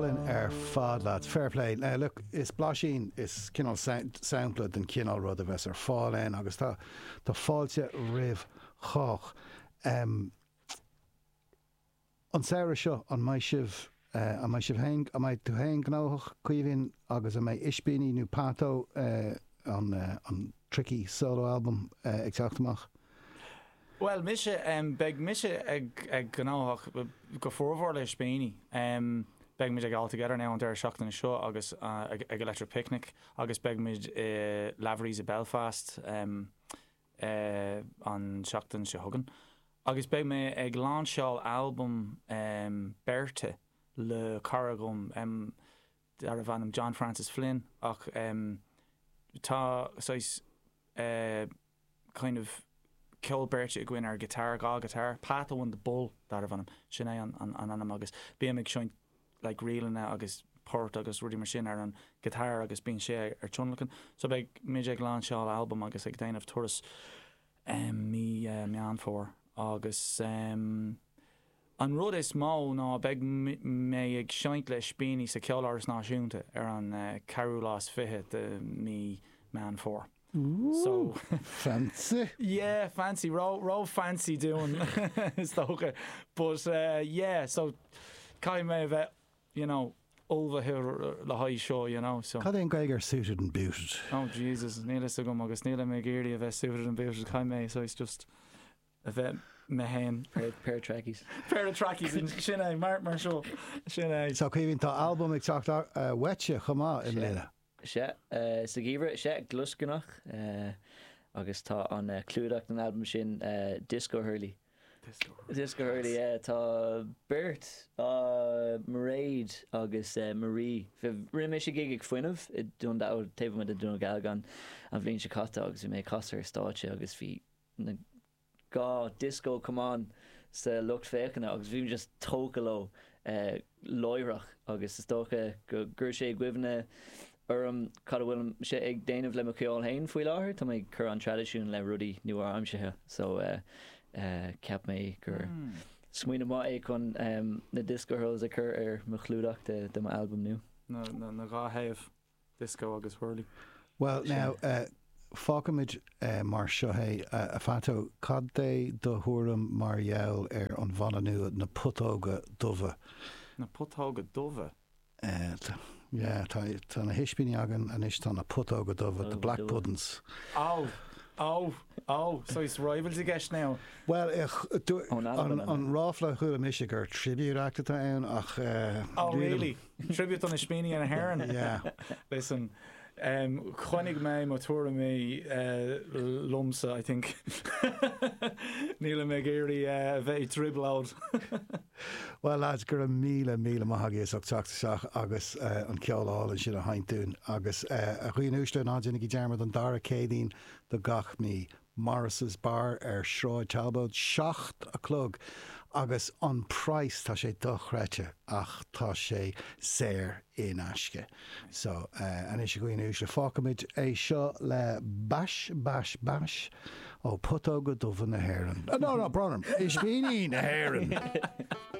álainn ar fad leat. Fair play. Look, is blaisín, is cineál sampla den chineál rud a bheas ar fáil ann agus tá tá fáilte roimh chách. An samhradh seo, an mbeidh sibh, an mbeidh sibh féin, an mbeidh tú féin gnóthach, Caoimhín, agus an mbeidh Ispíní nó Pato, an an tricky solo album, ag teacht amach? Bhuel mise, beidh mise ag gnóthach go formhór le Ispíní. Beimid ag All Together Now an deireadh seachtaine seo agus ag Electric Picnic agus beimid i Lavery's i Belfast an tseachtain seo chugainn. Agus beidh mé ag lainseáil albam beirte le cara dhom. darbh ainm John Francis Flynn ach tá saghas kind of ceol beirte againn ar guitar, dhá guitar, Pato and the Bull darbh ainm, sin é an ainm agus bím ag seinnt like ríleanna agus poirt agus rudaí mar sin ar an guitar agus bíonn sé ag tionlacan so beidh muid ag lainseáil albam agus ag déanamh turas mí Meán Fómhair agus An rud is mó ná beidh mé ag seinnt le Ispíní sa Ceoláras Náisiúnta ar an ceathrú lá is fiche de mí Meán Fómhair. So. Fancy. Yeah, fancy, ró, ró fancy dúinn is dócha but yeah so caithfidh mé a bheith you know ullmhaithe le haghaidh seo you know so. Cad é an Gaeilge ar suited and booted? Oh Jesus, níl a fhios agam agus nílim ag iarraidh a bheith suited and booted, caithfidh mé a rá, so it's just. a bheith mé féin. Pair of trackies. Pair of trackies sin é mar mar seo sin é. So Caoimhín tá albam ag teacht uait chomh maith i mbliana. Sea, sa gheimhreadh, sea, Gluascarnach agus ar an clúdach den albam sin Disco Hurley. Disco Hurley. Disco Hurley, yeah. Tá beirt, Mairéad agus Marie, rinne mise gig ag Fuinneamh i Dún Dealgan, taobh amuigh de Dún Dealgan an bhliain seo caite agus bhí mé ag casadh ar stáitse agus bhí na dhá dioscó camán sa lucht féachana agus bhí mé just tógtha leo láithreach agus is dócha gur chuir sé i gcuimhne orm cad a bhfuil mise ag déanamh le mo cheol féin faoi láthair tá mé ag cur an traidisiún le rudaí nua-aimseartha so cheap mé gur smaoineamh maith é chun na dioscó hurls a chur ar mo chlúdach de mo albam nua. na dhá thaobh. Disco agus Hurley. Bhuel, now, fágfaimid mar seo é. A Phato, cad é do thuairim mar gheall ar an bhanna nua, Na Putóga Dubha? Na Putóga Dubha? Yeah, tá na hIspíní againn anois, tá na Putóga Dubha, The Black Puddin's. Oh, oh, oh, so is rivals i gceist now? Bhuel, an ráfla a chuala mise gur tribute act atá ann ach. Oh really? Tribute ó Ispíní na hÉireann. Yeah. Listen, um, choinnigh mé mo thuairimí uh, liom-sa, I think. Nílim ag iarraidh uh, a bheith i dtrioblóid. Well lads, go raibh míle, míle maith agaibh as ucht teacht isteach agus uh, an ceol álainn sin a sheinnt dúinn agus uh, a dhaoine uaisle ná déanaigí dearmad an dara Céadaoin do gach mí. Morris's Bar ar Sráid Talbot, seacht a chlog agus an praghas tá sé dochreidte ach tá sé saor in aisce. So anois a dhaoine uaisle fágfaimid é seo le bash bash bash ó Putóga dubha na hÉireann. No no Bronagh, ispíní na hÉireann.